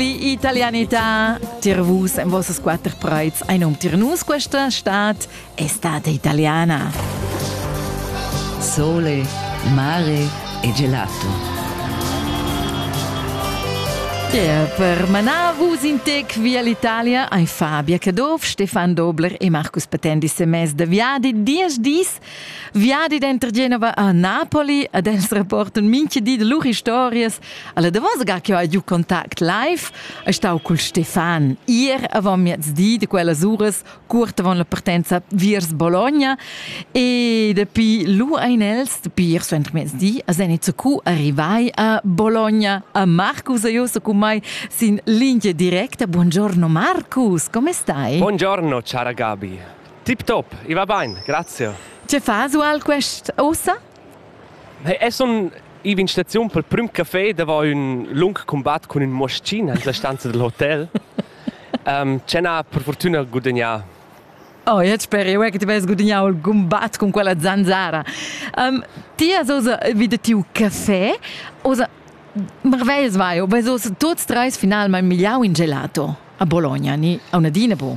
Die Italianità, dir vus en vossas quatter preits ein um dir nus questa stat estate italiana. Sole, mare e gelato. Yeah, per manar vus in tec via l'Italia ein Fabia Caduff, Stefan Dobler e Marcus Patendi semess de viadi diesch dis Viadi denter Genova a Napoli ad els rapporten minchi di de lur historias. Alla davos ga che ho giu contact live è stau col Stefan ir avant miezdi de quellas uras curt avant la partenza viers Bologna e dapi lu ein els dapi ir suenter miezdi a Zenica cu arrivai a Bologna a Marcus e io so con mai sin linea directa. Buongiorno Marcus, come stai? Buongiorno cara Gabi. Tip top, i va bain, grazie. Tge fas ual quest ossa? Hey, es un iv in staziun pel prüm café davo ün lung cumbat cun ün moschin en la stanza del hotel. um, cena per fortuna gudagnà. Oh, io spero io che ti vai guadagnare il combat con quella zanzara. Um, ti has osa vide tiu caffè, osa marvels vai, o bes osa tots treis finalmein migliau in gelato a Bologna, ni a una dina bu.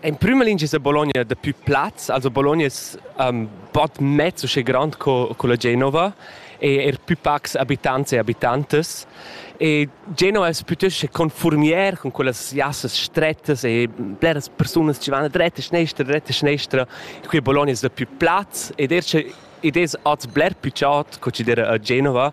In prüma lingia es a Bologna dapü plaz, also Bologna es um, bod mez uschè grand co co la Genova e eir pü pacs abitants e abitantas. E Genova es pütöst confuormier cun quellas jassas strettas e bleras persunas chi van dretta e schnestra, dretta e schnestra. Qui a Bologna es dapü plaz ed eir sche id es hoz bler pü chaud co chi d'eira a Genova,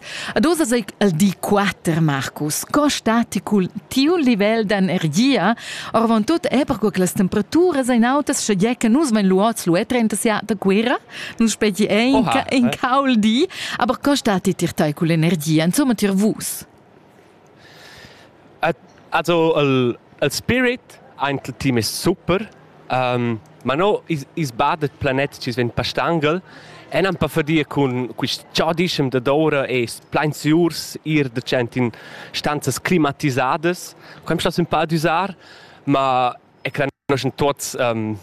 Ad oz ei el di quater, Marcus. Co stati cul tiu livel d'energia? Orvon tut è perco che las temperaturas ein autas, sche gie che nus vein luots lu e 30 siat da Guerra, nun speti ein Oha, in eh? caul di, aber co stati tir tei cul energia, insomma tier vus? Also il il spirit aint il team es super, ma no i's bada planet chi's vegn pastangel e nan pa fadia cun quist chodischem dad oura es plain süurs ir dachant in stanzas climatisadas. Quai am sta sün pa ad üsar, ma e crendoschen tuots um,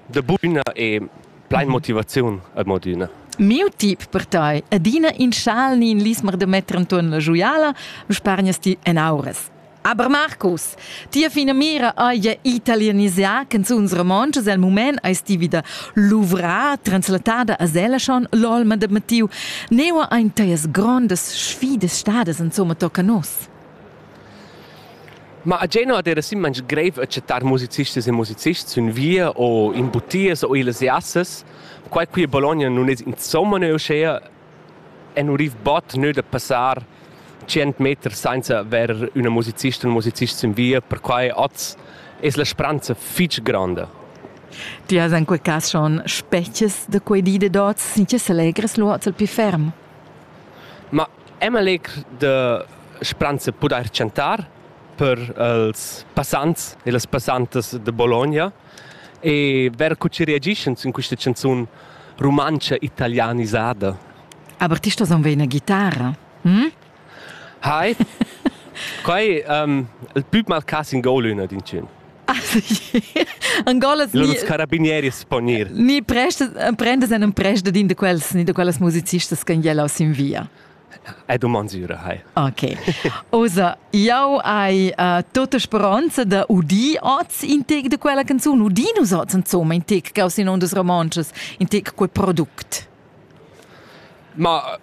da buna e plein motivaziun ad modüna. Miu tip per tai, adina in schal ni in lismer da metter anton la joiala, spargnas ti en auras. Aber Markus, tia fina mira haja italianisà canzuns romontschas el mument eis ti vida luvrà, translatada a Selaschon, l'olma de Mattiu. Neua ein teias grondas sfidas stadas insomma tocca nos? Ma a Genua ad era sim manch greiv acceptar musicistas e musicists sün via o in butias o illas jassas, quai qui a Bologna nun es insomma neu uschea e nu riv bod nö da passar tschient meter sainza avair üna musicista u musicist sün via, perquai oz es la spranza fich gronda. Ti has in quel cas schon spetges da quei di da dots, sin che selegres lu oz il più ferm? Ma Emma Legr da Spranza pudair chantar per els passants e las passantas da Bologna e ver co chi reagischan sün quista chanzun rumantscha italianisada. Aber ti stos anveir ina ghitara. Hm? Hi. Quai um, il pü mal cas in gol üna din tschün. Angolas ni carabinieri sponir. Ni prendas en prenda din de quels ni de quellas musicistas che jela sin via. È domandura hai. Ok. Osa, jau hai uh, tota speranza da udir oz in tec de quella canzun, udir nus oz insomma in tec, gaus in ondas romances, in tec quel product. Ma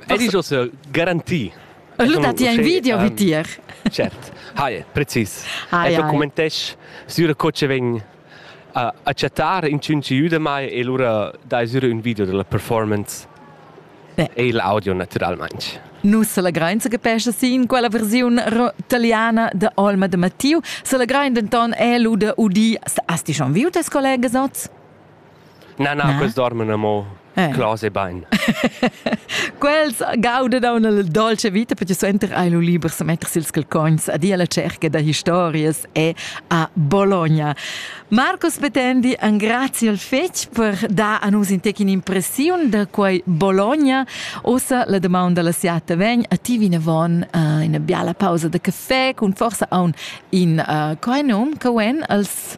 ed iso se garanti. Lu dat ti ein video vi tier. Cert. Hai, precis. Ecco commentesch sur co che vegn a accettare in cinci da mai e lura dai sur un video della performance e l'audio naturalmente. Nus selegrain che pesce sì in quella versione italiana de Olma de Mattiu, selegrain denton è lu de Udi, hast du schon viu tes Kollegen sots? Na, na, na. quels dorman amo eh. clos e bain. Quels gauda da una dolce vita perché suenter hai lu liber sa metter sils calcogns a dia la cerca da historias e a Bologna. Marcus Petendi, grazie al fetg per dar a nus in tec impressiun da quei Bologna. Ossa la demanda dalla siata vegn a ti vinavon uh, una biala pausa da caffè con forsa a un in uh, quai num, Coen als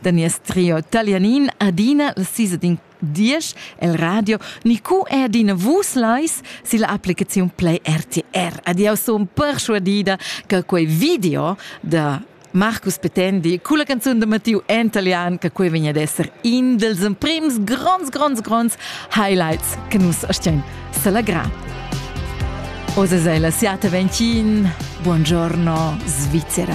da nies trio talianin adina la sisa din diesch el radio ni cu è adina vus lais si la applicazione play RTR. Adios son persuadida che quei video da Marcus Petendi con la canzone de Mattiu in italiano che qui vegna ad essere in dels prims gronds, gronds, gronds highlights che nus stiamo salagrà. Osesela siate ventin, buongiorno Svizzera.